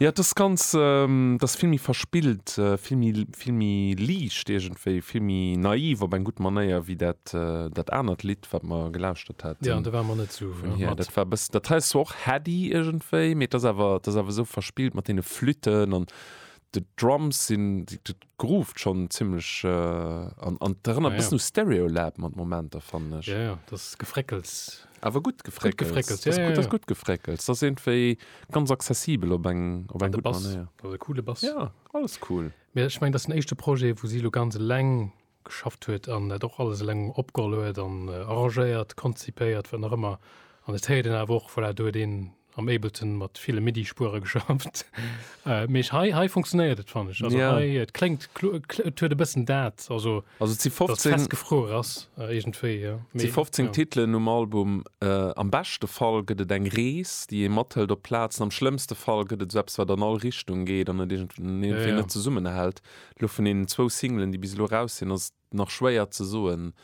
Jo, et ass ganz, et ass vill méi verspillt, vill méi, vill méi liicht iergendwéi, vill méi naiv op eng gutt Manéier wéi dat, dat anert Lidd, wat mer gelauschtert haten. Jo, do ware mer net esou mat. Dat war e bëssen, dat hei ass zwar och heady iergendwéi, mee et ass awer, et ass awer esou verspillt mat deene Flütten an de Drums sinn, dat grooved schonn zimmlech an, an et erënnert e bëssen u Stereolab mat Momenter, fannen ech. Jo, jo, dat Gefréckels. Awer gutt gefréckelt. Dat ass gutt gefréckelt. Dat ass iergendwéi ganz accessibel op eng gutt Manéier. Dat ass e coole Bass. Jo, alles cool. Mee ech mengen, dat ass den éischte Projet, wou si elo ganz eleng geschafft huet an dat och alles eleng opgeholl huet an arrangéiert, konzipéiert, wat nach ëmmer. An et héiert een awer och, voilà, do huet een am Ableton mat ville MIDI-Spuere geschafft. Äh, Mee hei, hei funktionéiert et fan ech. Also Ja. hei, et kléngt klo- et kl- et huet e bëssen dat, also Also si dat 15, festgefruer ass äh, iergendwéi. Ja. si 15 ja. Titelen um Album. Äh, am beschte Fall gëtt et eng Rees, déi ee mathëlt op d'Plazen. Am schlëmmste Fall gëtt et sou eppes, wat an all Richtung geet an et iergendwéi Ja, ja. net zesummenhält. Lo vun deenen zwou Singlen, déi bis elo raus sinn, ass et nach schwéier ze soen,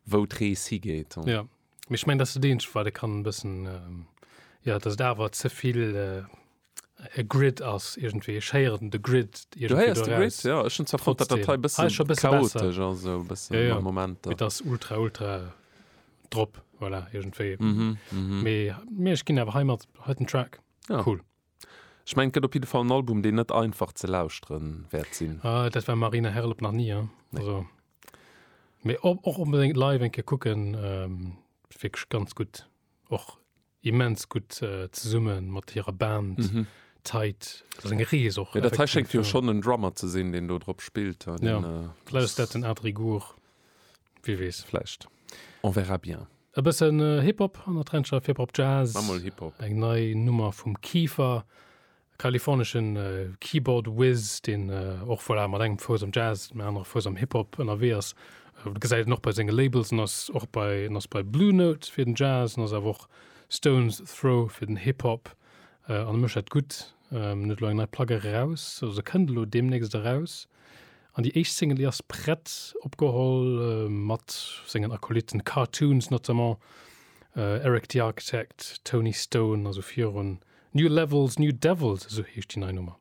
wou d'Rees higeet. Ja, mee ech mengen, dat ass dat Eenzegt, wat ee kann e bëssen, jo, dass et awer ze vill e Grid ass iergendwéi. Ech héieren de Grid iergendwéi eraus. Du héiers de Grid, jo. Ech hunn zwar fonnt, datt dat hei e bësse chaotesch ass, esou e bëssen an de Momenter. Jo, jo, et ass ultra, ultra drop, voilà, iergendwéi. Mee ech ginn awer heimat hei den Track cool. Ech mengen et gëtt op jidde Fall en Album deen net einfach ze lauschtere wäert sinn. Ah, dat war Marina Herlop nach ni, hein? Nee. Also, mee och onbedéngt live eng Kéier kucken, ähm, wierklech ganz gutt. Och immens gutt äh, zesumme mat hirer Band. Mhm. Tight, dat ass eng Rees och. Mee dat hei schéngt jo schonn en Drummer ze sinn, deen do drop spillt, hein? Ja, Den, äh, vläicht ass dat den Adri Goor. Wie wees, vläicht. On verra bien. E bëssen Hip-Hop an der Trencher, Hip-Hop Jazz. Maach mol Hip-Hop. Eng nei Nummer vum Kieffer, e kaliforneschen Keyboard Wiz, deen och voilà mat engem Fouss am Jazz, dem anere Fouss am Hip-Hop ënnerwee ass. Een gesäit en och bei senge Labels, en ass och bei, en ass bei Blue Note fir den Jazz, en ass awer och Stones Throw fir den Hip-Hop an e mécht dat gutt. En huet elo eng nei Plack eraus, also se kënnt elo deemnächst eraus. An déi éischt Single, déi ass prett, opgeholl mat sengen Acolyten, Cartoons notamment, Eric the Architect, Tony Stone, also virun New Levels, New Devils, esou heescht déi nei Nummer.